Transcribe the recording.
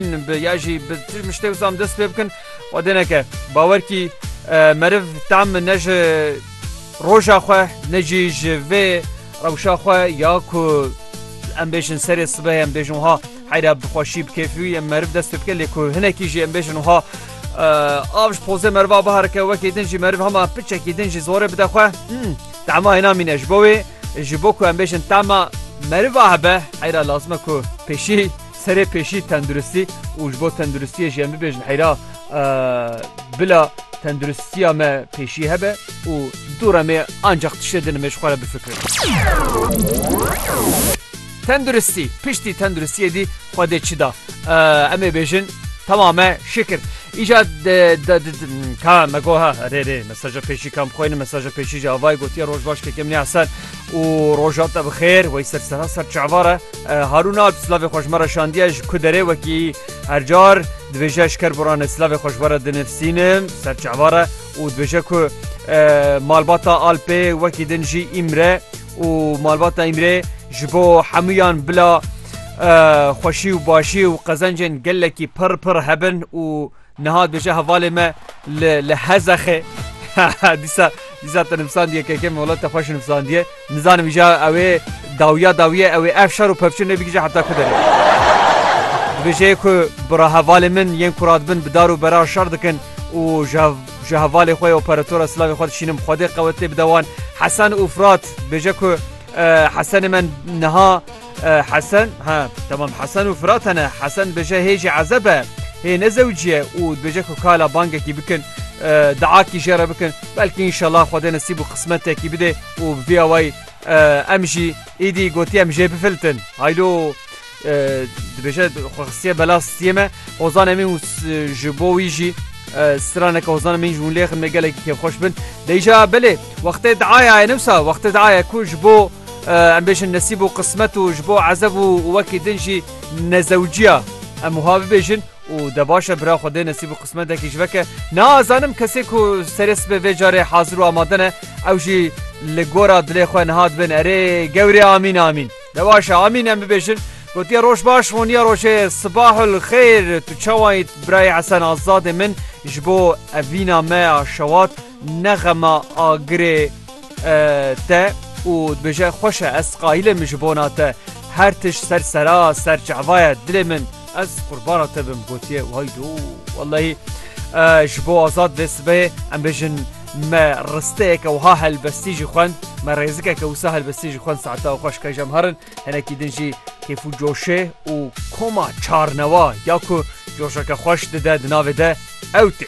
Bi ya jî bi tu min ji tê wisa dest pê bikin xwedê neke. Bawer kî meriv tam ne ji roja xwe ne jî ji vê rewşa xwe ya ku em bêjin serê sibehê em bêjin wiha heyra bi xweşî bi kêfî em meriv dest pê bike lê ku hinekî jî em bêjin wiha av ji pozê meriva biherike wekî din jî meriv hema piçekî din jî zorê bide xwe tema hêna mîne ji bo wê ji bo ku em bêjin tema meriva hebe heyra lazime ku pêşî Serê pêşî tenduristî û ji bo tenduristiyê jî em bibêjin heyra bila tenduristiya me pêşî hebe û dûra me ancaq tiştê din me ji xwe re bifikirin. Tenduristî piştî tenduristiyê dî xwe dê çi da? Em ê bêjin Tamam me şikir. Îca ka me goha rê rê mesaja pêşî kam xwên mesaja pêşî ji avayê gotiye roj baş kekem nê eser û rojat te bi xêr wey ser sera ser çavara Harun Alp slavê xweş me re şandiye ji ku derê wekî her car dibêje ji kerboranê slavê xweş were dinivsînim ser çavare û dibêje ku malbata Alpê wekî din jî îmre û malbata îmrê ji bo hemûyan bila xweşî û başî û qezencên gelekî pir pir hebin û Niha dibêje hevalê me li li Hezexê dîsa dîsa te nivîsandiye keke me welate xweş nivîsandiye. Nizanim îja ew ê dawiya dawiye ew ê ev şer û pevçir nebigije heta ku derê. Dibêje ku bira hevalê min yên ku radibin bi dar û berar şer dikin û ji hevalê xwe operatora silavê xwe dişînim xwedê qewetê bide wan. Hesen û Firat bêje ku Hesenê me niha Hesen, ha, temam Hesen û Firat hene. Hesen dibêje hê jî ezeb e. Hê ne zewcî ye û dibêje ku kala bangekî bikin. Diakî jê re bikin. Belkî înşellah Xwedê nisîb û qismetekî bide û bi vî awayî em jî îdî gotî em jê bifiltin. Haylo dibêje xwe xistiye bela stiyê me. Ozan Emîn û ji bo wî jî straneke Ozan Emîn ji wan lêxin me gelekî kêfxweş bin. Dêja belê. Wextê diayayê ne wisa wextê diayayê ku ji bo em bêjin nesîb û qismet û ji bo ezev û wekî din jî nezewciya em wiha bibêjin û de baş e bira xwedê nesîb û qismetekî ji veke nazanim kesê ku serê sibê vê carê hazir û amade ne ew jî li gora dilê xwe niha dibin erê gewrê amîn amîn de baş e amîn em bibêjin Gotiye roj baş honiya rojê sibahul xêr tu çawa yît birayê Hesen Azadê min ji bo evîna me a şewat Nexema Agirê te û dibêje xweş e ez qayîl im ji bona te her tişt ser sera ser çava ye dilê min ez qurbana te bim gotiye waydo wellahî ji bo azad vê sibeyê em bêjin me risteyeke wiha helbestî jî xwend me rêzikeke wisa helbestî jî xwend saeta xweş kej em herin hinekî din jî kêf û coşê û koma çarnewa ya ku coşeke xweş dide di navê de ew tê.